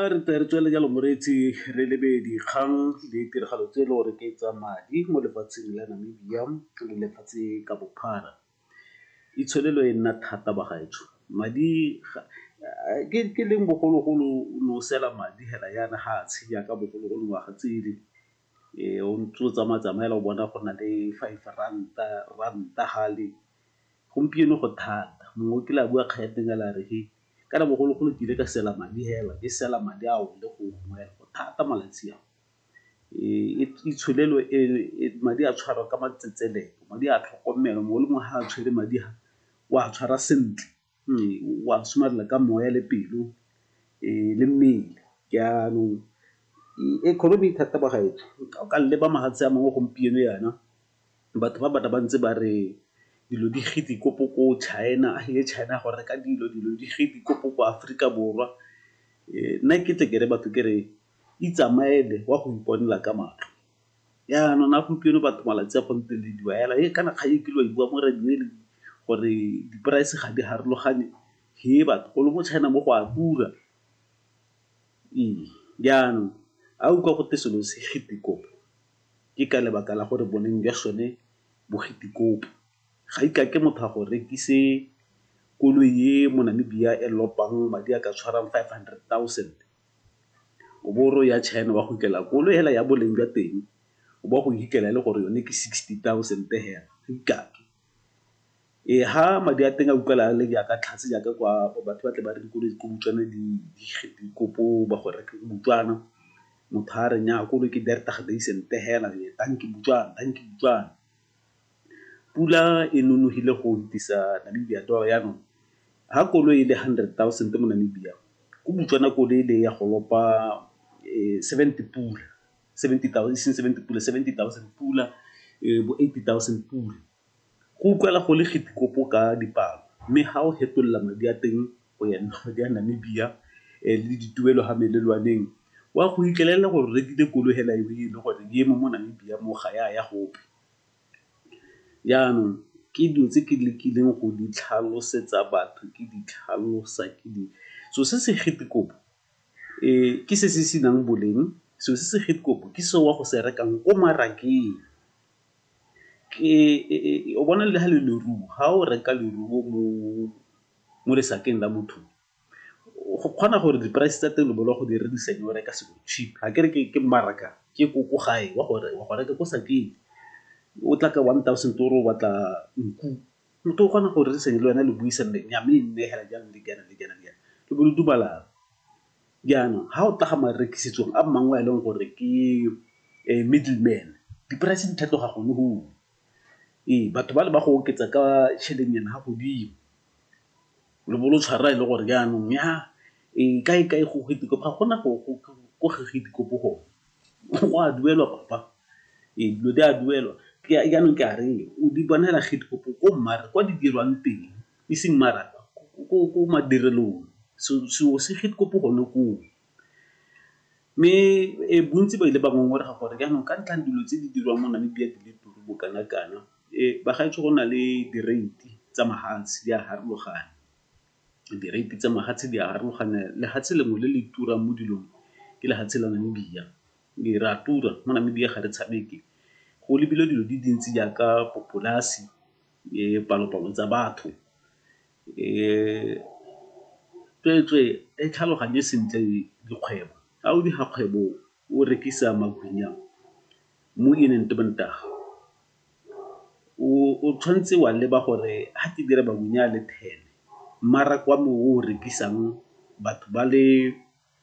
A re tle re tswelele jalo moreetsi re lebe dikgang le tiragalo tse e le gore ke tsa madi mo lefatsheng la Namibia le lefatshe ka bophara. Itsholelo e nna thata ba gaetsho, madi ke leng bogologolo o ne o sela madi hela yana ha a tshenyang ka bogologolo ngwaga tsele o ntse o tsamaya-tsamaya hela o bona go na le five ranta, ranta hale Gompieno go thata. Mongwe o kile a bua kgang e teng a le a re he, ka re bogologolo ke ile ka sela madi hela, ke sela madi a wele gongwe hela. Go thata malatsi a. Itsholelo e, madi a tshwarwa ka matsetseleko, madi a tlhokomelwa, mongwe le mongwe ha a tshwere madi a, o a tshwara sentle. wa somarela ka moya le pelo le mmele jaanong economy e thata bagaetsho o ka leba mafatshe a mangwe gompieno yana batho ba bata ba ntse ba re dilo di gidi ko china le china go reka dilo, dilo di gidi ko aforika borwa. Nna ke tle kere batho kere itsamaele wa go iponela ka matlho. Jaanong na gompieno batho malatsi a gompieno le diwa hela he kana kgang e kile wa e bua mo radio-ng gore di-price ga di harologane he batho golo mo China mo go a tura. Ee, jaanong ha o utlwa gote selo se Gitikopo ke ka lebaka la gore boleng jwa sone bo Gitikopo. Ga e ka ke motho a go rekise koloi e mo Namibia e lopang madi a ka tshwarang five hundred thousand. o bo o re o ya China o a go fitlhela koloi hela ya boleng jwa teng o bo o a go fitlhela e le gore yone ke sixty thousand hela ee ha madi a teng a utlwala a le jaaka tlhase jaaka kwa batho ba tle ba re dikoloi ko Botswana di ba go reka ko Botswana, motho a re nnyaa koloi ke hela tanki Botswana, tanki Botswana. Pula e nonogile go fetisa Namibia toro yanong ha koloi e le 100,000 mo Namibia ko Botswana koloi e le ya go lopa 70 pula, 70,000 e seng 70 pula 70,000 pula bo 80,000 pula. Go utlwala go le kgitikopo ka dipalo mme ha o fetolela madi a teng go ya nna madi a Namibia le dituelo ha melelwaneng wa go fitlhelela gore o rekile koloi fela e le gore e eme mo Namibia mo ga ya ya gope. Jaanong ke dilo tse ke lekileng go di tlhalosetsa batho ke di tlhalosa ke di, so se se ke se se senang boleng, so se se ke se o ya go se rekang ko mmarakeng. O bona le ha le leruo, ha o reka leruo mo lesakeng la motho go kgona gore di-price tsa teng go di rekisa di bereka so cheap. Ga ke re ke mmaraka ke ko gae wa gore wa go reka ko Sakeng o tla ka one thousand o re o batla nku, motho o kgona go rerisana le wena le buisana gore nyaa mme e nneegela jang le jaana le jaana le jaana le bo le dumalana. Jaanong ga o tla ga marekisetsong a mangwe a e leng gore ke middle man di-price di tlhatloga gone . Ee, batho ba le ba go oketsa ka tšhelenyana ya godimo lo bo lo tshwara e le gore jaanong ya ee kae-kae go ga gona ko go a duelwa papa ee dilo di a duelwa jaanong ke a re o di bonela ko mare kwa di dirwang teng e seng mara ko madirelong selo se gone koo. Mme bontsi ba ile ba ngongorega gore jaanong ka ntlhang dilo tse di dirwang mo Namibia di le turu bo kana kana, bagaetsho go na le direiti tsa mahatshe di a harologana. Direiti tsa mahatshe di a harologana, lehatshe lengwe le le turang mo dilong ke lehatshe la Namibia. Re a tura mo Namibia ga re tshameke, go lebilwe dilo di dintsi jaaka polase, dipalopalo tsa batho. Tsweetswee e tlhaloganye sentle dikgwebo. Ga o dira kgwebo o rekisa magwinya mo o tshwanetse wa leba gore ga ke dira magwinya a le ten, mmaraka wa me o o rekisang batho ba le